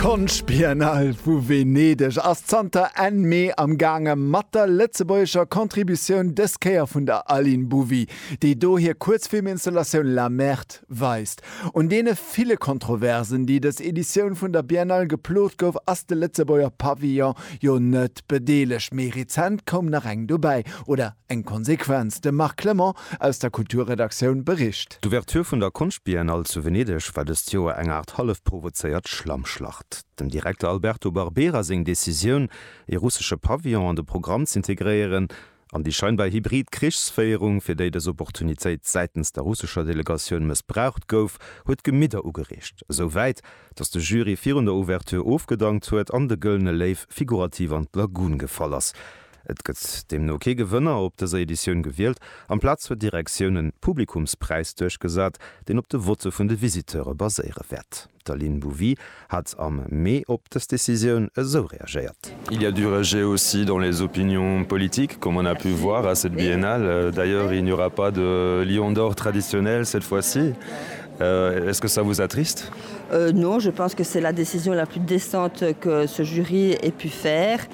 D'Konschtbiennale vu Venedeg ass zanter Enn Mee am gaange mat der lëtzebuergescher Contributioun, dës Kéier vun der Aline Bouvy, déi do hir Kuerzfilminstallatioun La Merde weist. Un deene ville Kontroversen, déi dës Editioun vun der Biennale geplot gouf, ass de Lëtzebuerger Pavillon jo net bedeelegt. Méi rezent koum nach eng dobäi, oder eng Konsequenz? De Marc Clement aus der Kulturredaktioun bericht. D'Ouverture vun der Konschtbiennale zu Venedeg war dëst Joer eng Aart hallef provozéiert Schlammschlacht. Dem Direkter Alberto Barbera seng Decisioun, ee russesche Pavillon an de Programm z'integréieren, an déi scheinbar hybrid Krichsféierung, fir déi dës Opportunitéit säitens der russescher Delegatioun mëssbraucht gouf, huet d'Gemidder ugereegt. Esou wäit, datt de Jury virun der Ouverture ofgedankt huet an de Gëllene Léiw figurativ an d'Lagun gefall ass. Et gëtt deemno kee Gewënner op dëser Editioun gewielt. Amplaz huet d'Direktioun e Publikumspräis duerchgesat, deen op de Votte vun de Visiteure baséiere wäert. D'Aline Bouvy hat am Mee op dës Decisioun esou reagéiert. Il y a du rejet aussi dans les opinions politiques, comme on a pu voir à cette biennale. D'ailleurs, il n'y aura pas de Lion d'or traditionnel cette fois-ci. Est-ce que ça vous attriste? Non, je pense que c'est la décision la plus décente que ce jury ait pu faire.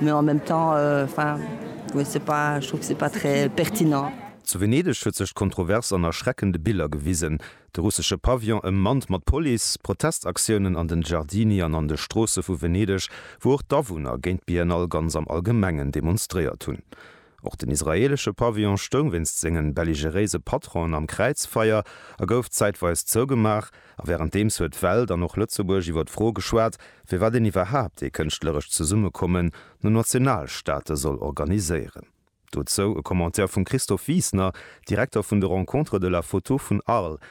Mais en même temps, enfin, je sais pas, je trouve que c'est pas très pertinent. Zu Venedeg huet sech d'Kontrovers an erschreckende Biller gewisen, De russesche Pavillon ëmmannt mat Police, Protestaktiounen an den Giardini an an de Stroosse vu Venedeg, wou och d'Awunner géint d'Biennale ganz am Allgemengen demonstréiert hunn. Och den israeelesche Pavillon stoung wéinst sengen belligeréise Patronen am Kräizfeier a gouf zäitweis zougemaach. A wärenddeems huet d'Welt an och Lëtzebuerg iwwer d'Fro geschwat, firwat een iwwerhaapt ee kënschtlerescht Zesummekommen no Nationalstaate soll organiséieren. Dozou e Commentaire vum Christophe Wiesner, Direkter vun de Rencontres de la Photo vun Arles,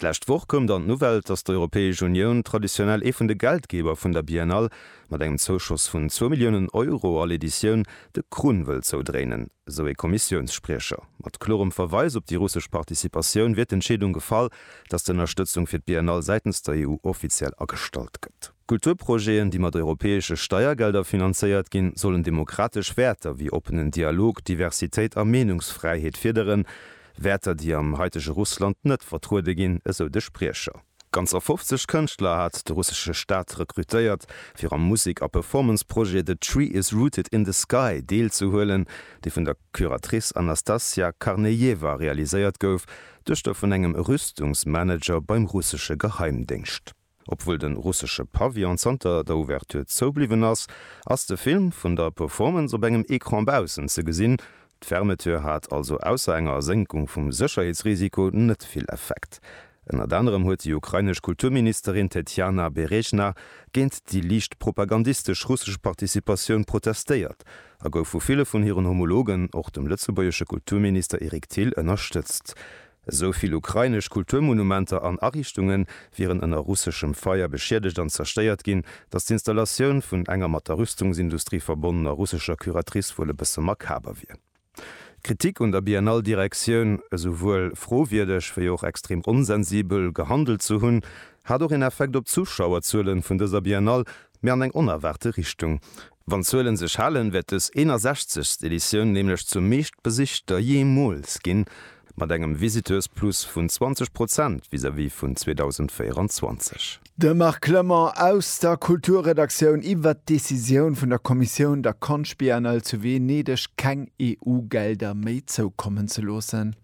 D'lescht Woch koum dann d'Nouvelle, datt d'Europäesch Unioun, traditionell ee vun de Geldgeber vun der Biennale, mat engem Zouschoss vun zwou Milliounen Euro all Editioun de Krunn wëll zoudréinen, esou ee Kommissiounsspriecher. Mat klorem Verweis op déi russesch Participatioun wier d'Entscheedung gefall, datt d'Ënnerstëtzung fir d'Biennale säitens der EU offiziell agestallt gëtt. Kulturprojeten, déi mat europäesche Steiergelder finanzéiert ginn, sollen demokratesch Wäerter wéi oppenen Dialog, Diversitéit a Meenungsfräiheet fiederen, Wäerter, déi am haitege Russland net vertruede ginn, esou de Spriecher. Ganzer 50 Kënschtler hat de russesche Staat rekrutéiert, fir am Musek a Performance-Projet The Tree Is Rooted In The Sky deelzehuelen, dee vun der Curatrice Anastasia Karnejewa realiséiert gouf, Duechter vun engem Rüstungsmanager beim russesche Geheimdéngscht. Obwuel de russesche Pavillon zanter der Ouverture zou bliwwen ass, ass de Film vun der Performance op engem Ecran baussen ze gesinn. D'Fermeture hat also ausser enger Ersénkung vum Sécherheetsrisiko net vill Effekt. Ënnert anerem huet déi ukrainesch Kulturministerin Tetjana Berezjna géint déi liicht propagandistesch russesch Participatioun protestéiert a gouf vu ville vun hiren Homologen, och dem lëtzebuergesche Kulturminister Eric Thill, ënnerstëtzt. Esou vill ukrainesch Kulturmonumenter an Ariichtunge wieren ënner russeschem Feier beschiedegt an zerstéiert ginn, datt d'Installatioun vun enger mat der Rüstungsindustrie verbonnener russescher Curatrice wuel e bësse makaber wier. D'Kritik un der Biennale-Direktioun, esouwuel frowierdeg wéi och extrem onsensibel gehandelt ze hunn, hat och een Effekt op d'Zuschauerzuele vun dëser Biennale, mee an eng onerwaarte Richtung. Wann d'Zuelen sech halen, wäert dës 61. Editioun nämlech zur meeschtbesichter jeemools ginn, mat engem Visiteursplus vun 20 Prozent vis-à-vis vun 2024. De Marc Clement aus der Kulturredaktioun iwwert d'Decisioun vun der Kommissioun, der Konschtbiennale zu Venedeg keng EU-Gelder méi zoukommen ze loossen.